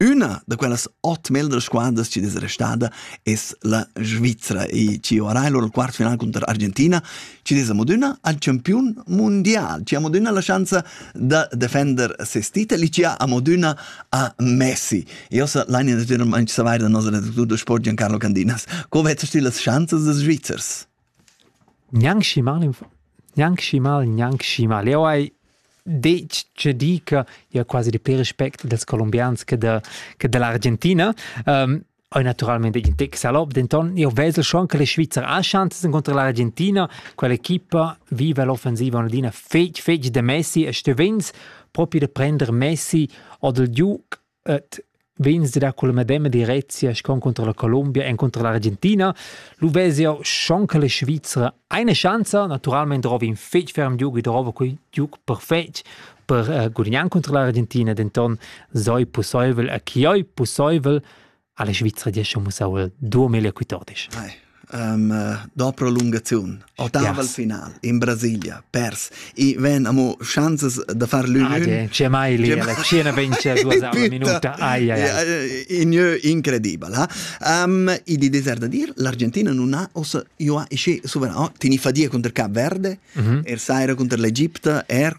Üna da quellas ot meglras squadras chi'd es restada es la Svizra e chi ovarà il lur quart final cunter Argentina chi'd es amo adüna al champiun mundial, chi ha amo adüna la schanza da defender seis titel e chi ha amo adüna a Messi. Io so l'aine natüralmaing savair da nos redactur da sport Giancarlo Candinas. Co vezzast tü las schanzas dals Svizzers? Gnanc schi mal gnanc schi mal gnanc schi mal. Jau hai detg tge di che jau quasi di pir respect dals columbians che da che da l'Argentina. Hai naturalmain detg in tec salop, denton jau vesel schon che la Svizra ha schanzas encunter l'Argentina. Quell'equipa viva l'offensiva adina fetg fetg da Messi e stevens propi da prender Messi oder Duke Et vegns da dar cula medema direzia schon contro la Colombia en contro l'Argentina, lu vezia schon che la Svizzera eine chance, naturalmente drova in fetg ferm giug e drova quei giug perfetg per uh, gudignar contro l'Argentina, denton sei possibel a chioi possibel alla Svizra diescha mussau duo meglio quitodisch. Hai. Um, uh, do prolungaziun otaval yes. final in Brasilia pers i ven amo chances da far l'union c'è mai lì la Cina vince due minuta ai ai in incredibile um, i di desert da dir l'Argentina non ha os io ha isci sovrano tini fadia contro Cap Verde mm -hmm. er saira contro l'Egitto er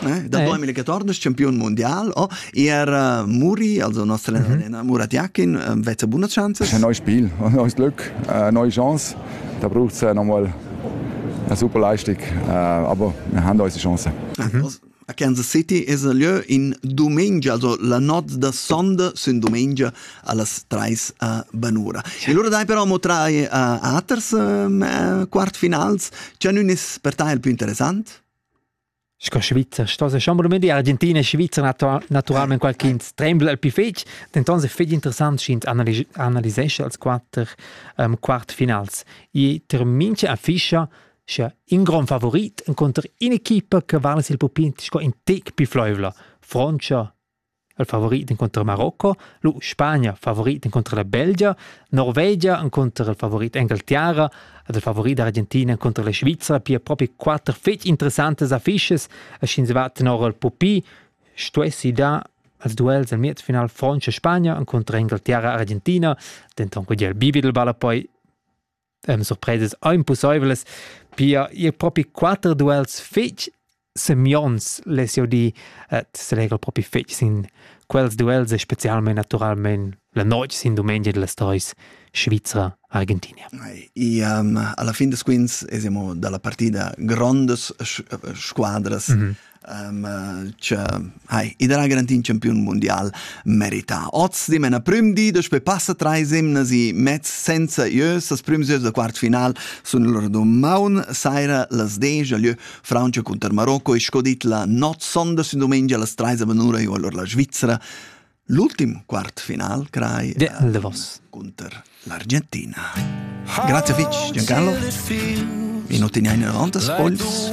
Eh? Da poi 2014 campion mondial o er uh, Muri, also nostra mhm. allenatore mm Murat Jakin, uh, vezza buna chance. Ist ein neues Spiel, ein neues Glück, eine neue Chance. Da braucht es nochmal eine super Leistung, aber wir haben unsere Chance. Mhm. A Kansas City es a lieu in domenica, also la notte da sonda sin domenica allas 3 a Banura. E loro dai però mo tra uh, aters uh, quartfinals, c'è un per te il più interessante? Sco Svizzer stos e chamber mendi Argentina e Svizra natu naturalment qualch'ins trembla el pi fetg, denton se fetg interessant sch'ins analisescha als quatter um, quartfinals. I termincha a fischa scha in grand favorit inconter in'equipa che vala sil pupin sco in tec pi fluivla, Francia il favorit inconter Marocco, lu Spagna favorit inconter la Belgia, Norvegia inconter il favorit Engalterra ed il favorit Argentina inconter la Svizra, pia propi quatter fetg interessantes affiches e sch'ins va tenor il pupi, stuessi dar als duels al miez final Frantscha-Spagna inconter Engalterra-Argentina, denton quei el bivi del balla poi ähm, surpresas impossiblas, pia ir propi quatter duels fetg semionts l'SOD äh, selegel propi fetg sin quels duels e specialmente naturalmente la notte sin domenica della stories Svizra Argentina. E um, alla fin des quins esiamo dalla partida grondes squadras mm -hmm. Cioè, hai, i darà garantì in campiun mundial merità. Oz di mena prüm di, daspö passa trais emnas i mezz senza ieus, las prüms ieus da quartfinal sun lur dumaun saira las desch a lieu Francia cunter Marocco e sco dit la not sonda sün dumengia las trais a vanura io allora la Svizzera. L'ultim quartfinal crai De eh, Davos. contro l'Argentina. Grazie fitch Giancarlo. Minuti ne hai 90 spoils.